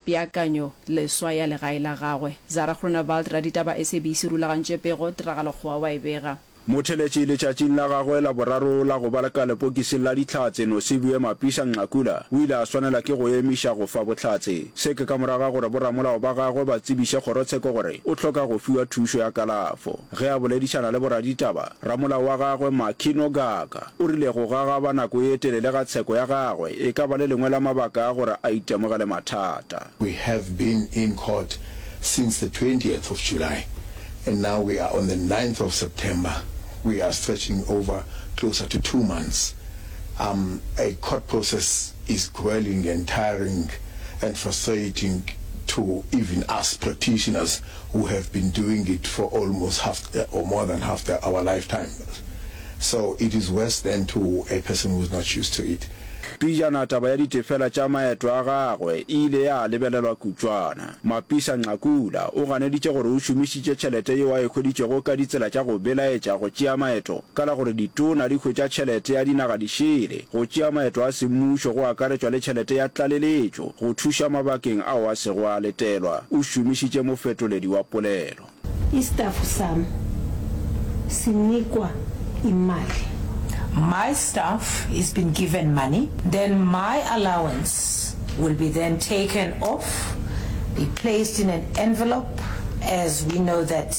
Peakanyo leswa ya legae la gagwe. Zara Groenewald, raditaba SABC, rulagantše pego, tiragalo kgowa wa e bega. Motheletši letšatšing la gagwe la boraro la go ba ka lepokising la Dihlatse, Nosiviwe Mapisa-Nqakula o ile a swanela ke go emiša go fa bohlatse. Se ke ka morago ga gore boramolao ba gagwe ba tsebiše kgorotsheko gore o hloka go fiwa thušo ya kalafo. Ge a boledišana le boraditaba, ramolao wa gagwe Maki Nogaka o rile go gagaba nako ye telele ga tsheko ya gagwe e ka ba le lengwe la mabaka a gore a itemogele mathata. We have been in court since the twentieth of July and now we are on the ninth of September, we are stretching over closer to two months. Um a court process is grueling and tiring and frustrating to even us practitioners. who have been doing it for almost half or more than half the our lifetime so it is worse than to a person who is not used to it. Pejana taba ya ditefela tša maeto a gagwe e ile ya lebelelwa kutšwana. Mapisa Nqakula o ganeditše gore o šomišitše tšhelete yeo a e hweditšego ka ditsela tša go belaetša go tšea maeto Ka la gore ditona di hwetša tšhelete ya dinaga di šele, go tšea maeto a semmušo go akaretšwa le tšhelete ya tlaleletšo go thuša mabakeng ao a sego a letelwa, o šomišitše mofetoledi wa polelo. Istaff sam sinikwa imali. My staff is been given money, then my allowance will be then taken off, be placed in an envelope as we know that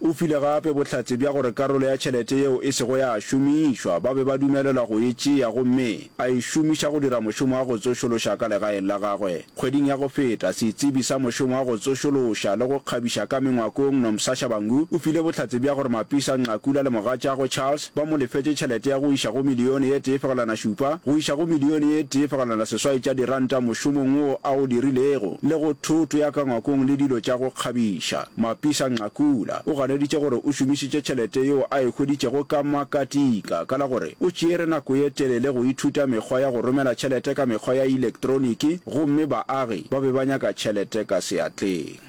O file gape bohlatse bja gore karolo ya tšhelete yeo e sego ya šomišwa ba be ba dumelelwa go e tšea gomme a e šomiša go dira mošomo wa go tsošološa ka legaeng la gagwe. Kgweding ya go feta, setsebi sa mošomo wa go tsošološa le go kgabiša ka mengwakong Nomsa Shabangu o file bohlatse bja gore Mapisa Nqakula le mogatšagwe Charles ba mo lefetše tšhelete ya go iša go milione ye tee fegelwana šupa go iša go milione ye tee fegelwana seswai tša diranta mošomong wo a o dirilego le go thoto ya ka ngwakong le dilo tša go kgabiša. Mapisa Nqakula o ganeditše gore o šomišitše tšhelete yeo a e hweditšego ka makatika ka la gore o tšeere nako ye telele go ithuta mekgwa ya go romela tšhelete ka mekgwa ya elektroniki gomme baagi ba be ba nyaka tšhelete ka seatleng.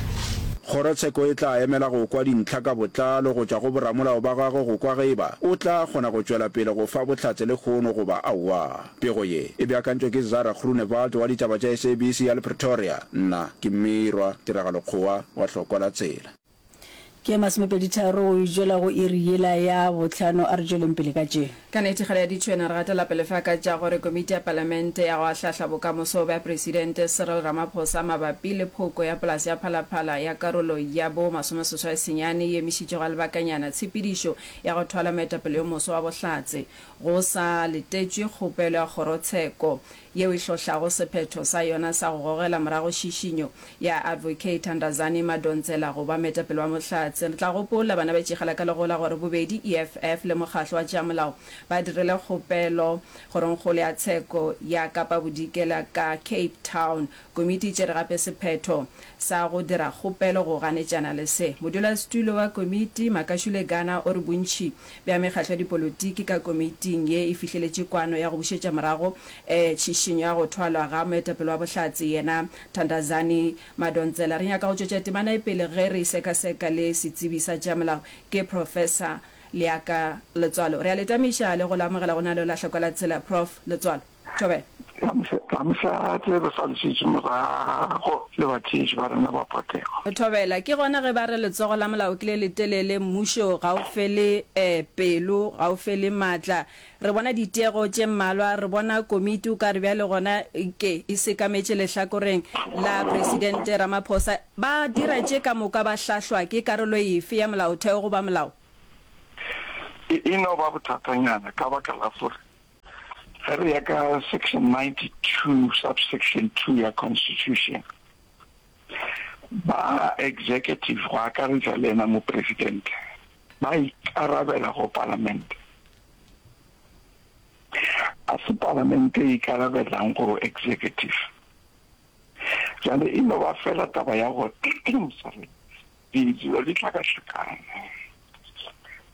Kgorotsheko e tla emela go kwa dintlha ka botlalo go tšwa go boramolao ba gagwe go kwa ge e ba o tla kgona go tšwela pele go fa bohlatse lekgono goba aowa. Pego ye e beakantšwe ke Zara Groenewald wa ditaba tša SABC ya le Pretoria. Nna ke Mmirwa Tiragalo Kgowa wa Hlokwa la Tsela. Ke ye masomepeditharo go itšwela go iri yela ya bohlano. A re tšweleng pele ka tše. Ka nete ga re a ditšhwena, re gatela pele fa ka tša gore Komiti ya Palamente ya go Ahlahla Bokamoso bja Presidente Cyril Ramaphosa mabapi le phoko ya polase ya Phalaphala ya karolo ya bo masomeseswai senyane e emišitšwe ga lebakanyana tshepedišo ya go thwala moetapele yo moswa wa Bohlatse go sa letetšwe kgopelo ya kgorotsheko yeo e hlohlago sephetho sa yona sa go gogela morago šišinyo ya Advocate Thandazani Madonsela go ba moetapele wa Bohlatse. Re tla gopola banabatšegela ka legola gore bobedi EFF le Mokgatlo wa tša Molao ba dirile kgopelo Kgorongkgolo ya Tsheko ya Kapa Bodikela ka Cape Town Komiti e tšere gape sephetho sa go dira kgopelo go ganetšana le se. Modulasetulo wa komiti, Makashule Gana o re bontši bja mekgatlo ya dipolotiki ka komiting ye e fihleletše kwano ya go bušetša morago tšhišinyo ya go thwalwa ga moetapele wa Bohlatse yena Thandazani Madonsela. Re nyaka go tšwetša temana ye pele ge re e sekaseka le setsebi sa tša molao ke Professor Leaka Letswalo. Re a le tamiša le go le amogela go na le Lahlokwelatsela Prof. Letswalo. Joel. Ga mo sa rate re sa ntšhitše morago le batšeetši ba rena ba potego. Thobela, Ke gona ge ba re letsogo la molao ke le letelele, mmušo ga o fele pelo, ga o fele maatla. Re bona ditiego tše mmalwa, re bona komiti o ka re bjale gona ke e sekametše lehlakoreng la Presidente Ramaphosa. Ba dira tše ka moka ba hlahlwa ke karolo efe ya molaotheo goba molao? E no ba bothatanyana ka baka la gore Ge re ya ka Section 92, Subsection 2 ya Constitution, ba Executive, go akaretša le yena Mopresidente, ba ikarabela go Palamente. A se Palamente e ikarabelang go Executive? Bjale e no ba fela taba ya go, sorry, Dilo di hlakahlakana.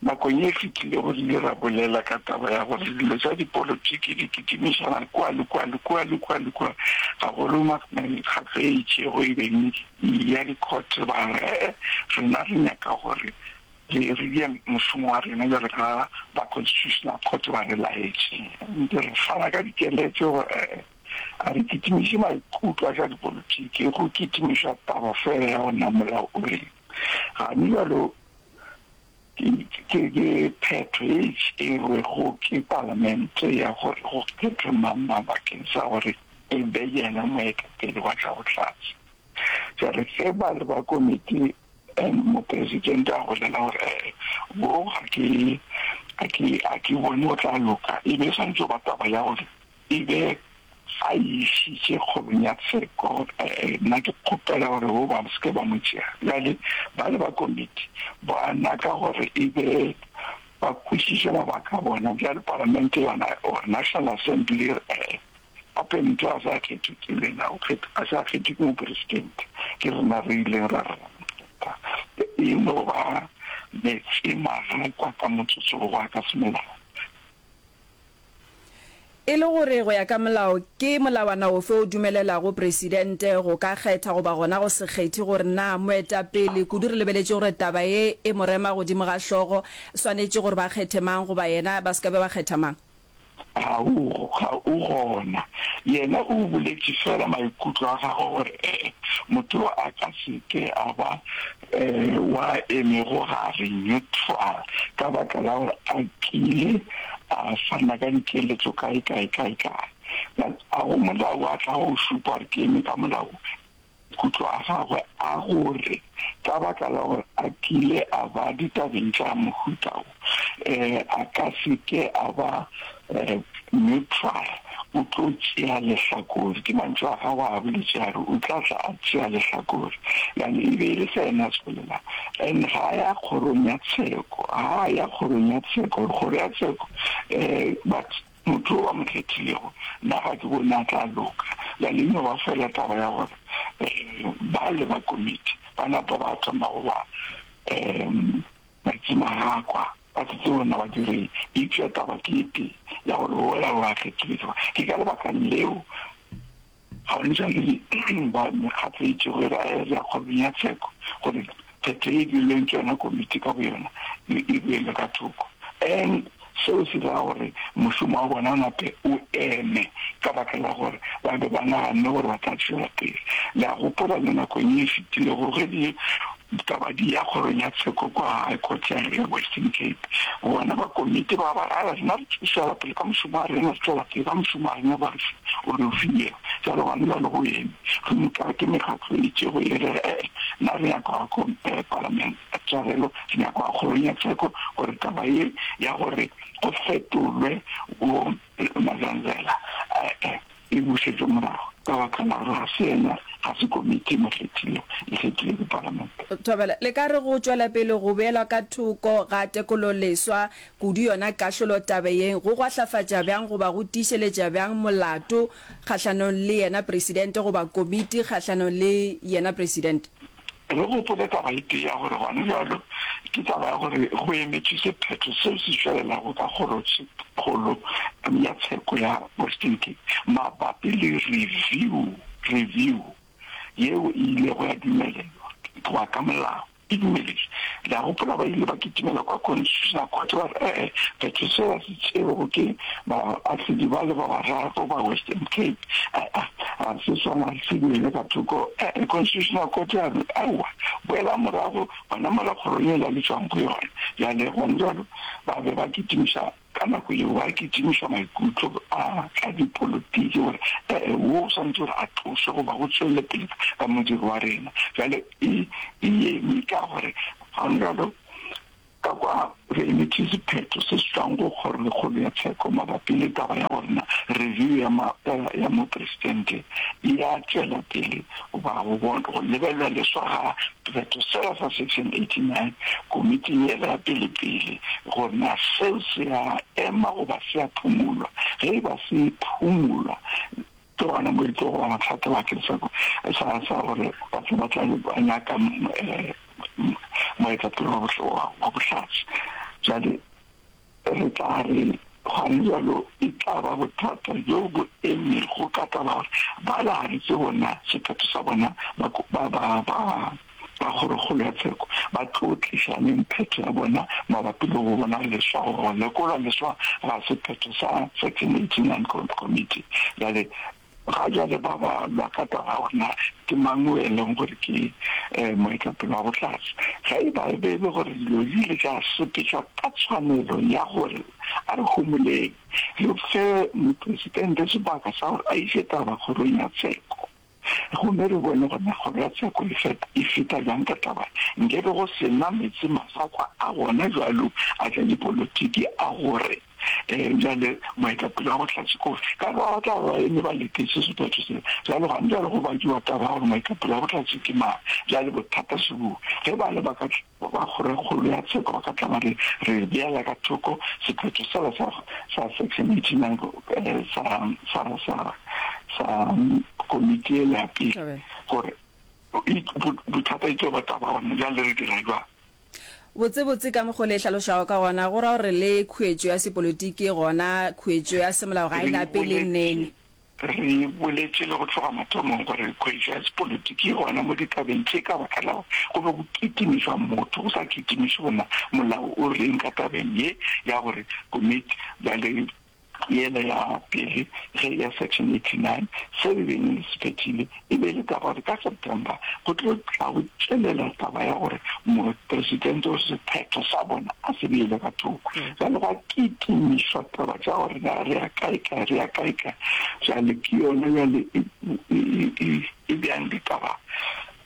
Nakong ye e fetilego re ile ra bolela ka taba ya gore dilo tša dipolotiki di kitimišana kua le kua le kua le kua le kua, gagolo mekgatlo e itšego e beng e ya dikhothe. Ba re, Ee, rena re nyaka gore re re dire mošomo wa rena bjalo ka ba Constitutional Court ba re laetše. Ntse re fana ka dikeletšo. A re kitimiše maikutlo a tša dipolotiki go kitimiša taba fela ya go namola. O re, Gane bjalo ke phetho ye e tšerwego ke Palamente ya gore go kgethwe mang-mang bakeng sa gore e be yena moetapele wa tša bohlatse. Bjale ge ba le ba komiti, Mopresidente a bolela gore, Ee, boo ga ke bone go tla loka. E be e swanetše go ba taba ya gore E be a e išitše kgorong ya tsheko. Ee, nna ke kgopela gore wo ba se ke ba mo tšea. Bjale bale ba komiti ba naka gore e be ba kwešiše mabaka a bona. Bjale palamente yona, or National Assembly, ee, gape motho a sa kgethwe ke lena, o kgethwe, a sa kgethwe ke mopresidente, ke rena re ileng ra re ra mo kgetha. E no ba meetse magakwa ka motsotso wo wa ka semolao. E le gore go ya ka molao ke molawana ofe o dumelelago Presidente go ka kgetha goba gona go se kgethe gore na moetapele, kudu re lebeletše gore taba ye e mo rema godimo ga hlogo, swanetše gore ba kgethe mang goba yena ba se ka be ba kgetha mang? Ga o, ga o gona. Yena o boletše feela maikutlo a gagwe gore ee, motho yo a ka se ke a ba wa emego gare, neutral, ka baka la gore a kile a fana ka dikeletšo kae, kae, kae, kae. But a go molao a tla go šupa gore ke eme ka molao? Maikutlo a gagwe a gore ka baka la gore a kile a ba ditabeng tša mohuta wo, a ka se ke a ba neutral, o tlo tšea lehlakore. Ke mantšu a gagwe a boletše a re o tla tla a tšea lehlakore. Bjale e be e le se yena a tswelelang. And ga a ya kgorong ya tsheko, ga a ya kgorong ya tsheko gore kgoro ya tsheko but motho o ba mo kgethilego nna ga ke bone a tla loka. Bjale e no ba fela taba ya gore bale ba komiti ba napa ba thoma go ba. Baritšhima ya kwa ba tshetse ona wa dire eupša taba ke ye tee ya gore wola wa kgetholetšwa. Ke ka lebakang leo Babenjamini ba mekgatlo e itšego e ba e lya kgorong ya tsheko gore kgetho ye e dirilweng ke yona komiti ka boyona e boelwe ka thoko. Seo se ra gore mošomo wa bona o nape o eme ka baka la gore ba be ba naganne gore ba tla tšwela pele. Le a gopola le nakong ye e fetilego ge di taba di ya Kgorong ya Tsheko kua High Court ya Western Cape, bona ba komiti ba ba ra, Ala, rena re tlo tšwela pele ka mošomo wa rena, re tšwela pele ka mošomo wa rena, ba re fe o re o filego. Bjalo gona bjalo go eme. Gomme ka re ke mekgatlo e itšego e re, Ee, na re nyaka go ya ko Palamente. Tswalelo se nyakwa kgorong ya tsheko gore taba ye ya gore go fetolwe bo Mazanzela e-e e bušetšwe morago ka baka la gore ga se yena ga se komiti mokgethile e kgethile ke palamente. Thobela, le ka re go tšwela pele go beelwa ka thoko ga tekololeswa kudu yona kahlolo tabe ye go gwahlafatša bjang goba go tiišeletša bjang molato kgahlanong le yena Presidente goba komiti kgahlanong le yena Presidente? Re gopole taba e tee ya gore gona bjalo ke taba ya gore go emetšwe sephetho seo se tšwelelago ka Kgorotshekgolo ya Tsheko ya Western Cape mabapi le review, review, yeo e ilego ya dumelelwa go ya ka molao. E dumeletšwe. Le a gopola ba ile ba kitimela kwa Constitutional Court ba re, Ee, phetho seo ya Seo ke baahlodi ba le ba bararo ba Western Cape. A-a, ga se sona se beele ka thoko. A-a, Constitutional Court ya re, Aowa, boelang morago, ba namola kgoro yela le tšwang go yona. Bjale, gona bjalo, ba be ba kitimiša, ka nako yeo, ba kitimiša maikutlo a tša dipolotiki, gore, A-a, wo o swanetše gore a tlošwe, goba go tšwelele pele ka modiro wa rena. Bjale, e, e eme ka gore, gona bjalo, Ka kwa re emetše sephetho se se tšwago go Kgorokgolo ya Tsheko mabapi le taba ya gore na review ya maapela ya Mopresidente e ya tšwela pele goba go bona go lebelela leswa ga sephetho sela sa Section 89 komiting yela ya pelepele gore na seo se a ema goba se a phumulwa. Ge e ba se phumulwa, Ke gona mo re tlo go bona thata bakeng sa gore batho ba tla be ba nyaka moetapele wa bohlowa wa bohlatse. Jale re tla re gane jalo e tla ba bothata bjo bo emego ka taba ya gore ba laletše bona sephetho sa bona ba ba Kgorokgolo ya Tsheko ba tlo tliša neng phetho ya bona mabapi le go bona leswa goba go lekolwa leswa ga sephetho sa Section 89 Committee? Bjale, ga bjale ba ba lwa ka taba ya gore na ke mang yo e leng gore ke moetapele wa bohlatse. Ge e ba e be e le gore dilo di ile tša sepetšwa ka tshwanelo ya gore a re homoleng re fe Mopresitente sebaka sa gore a iše taba Kgorong ya Tsheko, Gomme re bone gore megolo ya tsheko e feta, e feta bjang ka taba ye. Nkebe go se na meetse masakwa a gona bjalo a tša dipolotiki a go re, Ee, bjale moetapele wa bohlatse ke ofe? Ka kwa ba tla ba ba eme ba letetše sephetho seo. Bjale gona bjale go bakiwa taba ya gore moetapele wa bohlatse ke mang. Bjale bothata se boo, ge ba le ba ka. Ba ba kgorokgolo ya tsheko ba ka tla ba re, Re beela ka thoko sephetho sela sa, sa Section 89 sa, sa, sa, sa komiti yela ya pele, gore e, bo, bothata e tlo ba taba gona bjale, re dira bjang? Botsebotse ka mokgo le hlalošago ka gona, go ra gore le khuetšo ya sepolitiki, gona khuetšo ya semolao ga e lape le nene. Re boletše le go tloga mathomong gore re hwetša sepolotiki gona mo ditabeng tše ka baka la gore go be go kitimišwa motho, go sa kitimišwe gore na molao o reng ka tabeng ye ya gore komiti ya le yela ya pele ge ya Section 89 seo e beng e se phethile E be e le taba gore ka September go tlo tla go tšwelela taba ya gore mopresidente o sephetho sa bona a se beele ka thoko. Jale gwa kitimišwa taba tša gore na re ya kaekae, re ya kaekae. Jale ke yona jale e, e, e, e bjang ditaba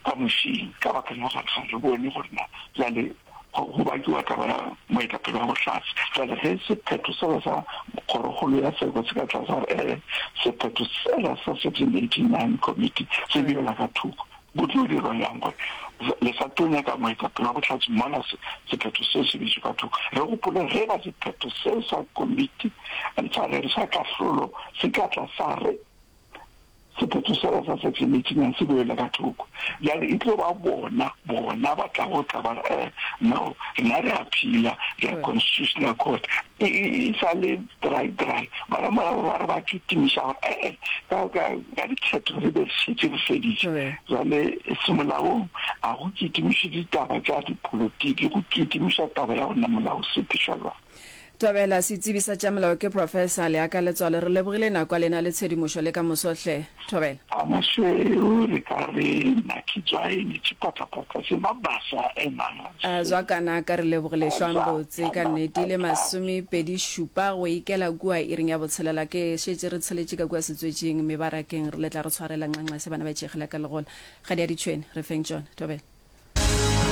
ka mošing ka baka la gore ga re bone gore na jale go bakiwa taba ya moetapele wa bohlatse. Bjale ge sephetho sela sa Kgorokgolo ya Seko se ka tlase ga ee, sephetho sela sa 1689 Committee se bjela ka thoko, go tlo dirwa bjang gore le sa tlo nyaka moetapele wa bohlatse mola sephetho seo se bitšwe ka thoko? Re gopole ge ba sephetho seo sa Komiti sa Kahlolo se ka tla sa re, Sephetho sela sa sefiletšinang se bewe le ka thoko. Bjale e tlo ba bona, bona ba tla go tla ba re, Eh, no, rena re a phela, re a Constitutional Court. E, e, e sa le dry, dry. Bara morago ba re ba kitimiša gore, Eh, eh, ka, ka, ka dikgetho re be re šetše re feditše. Bjale semolaong a go kitimišwe ditaba tša dipolotiki, go kitimišwa taba ya go na molao sephe, šalwang. Thobela, Setsebi sa tša molao ke Professor, le aka letswalo. Re lebogile nako ya lena le tshedimošo le ka moso hle. Thobela. Amasweu re ka re naki tswai ni tshipatapata se mabasa e masi. A zwa kana ka re lebogile hlwang botse ka nnete ile masome pedi šupa go ikela kua iring ya botshelela ke šetše re tsheletše ka kua setswetšing mebarakeng re letla re tshwarela nxanxa se bana ba itšegela ka legola ga di a ditšhwene re feng tšona. Thobela.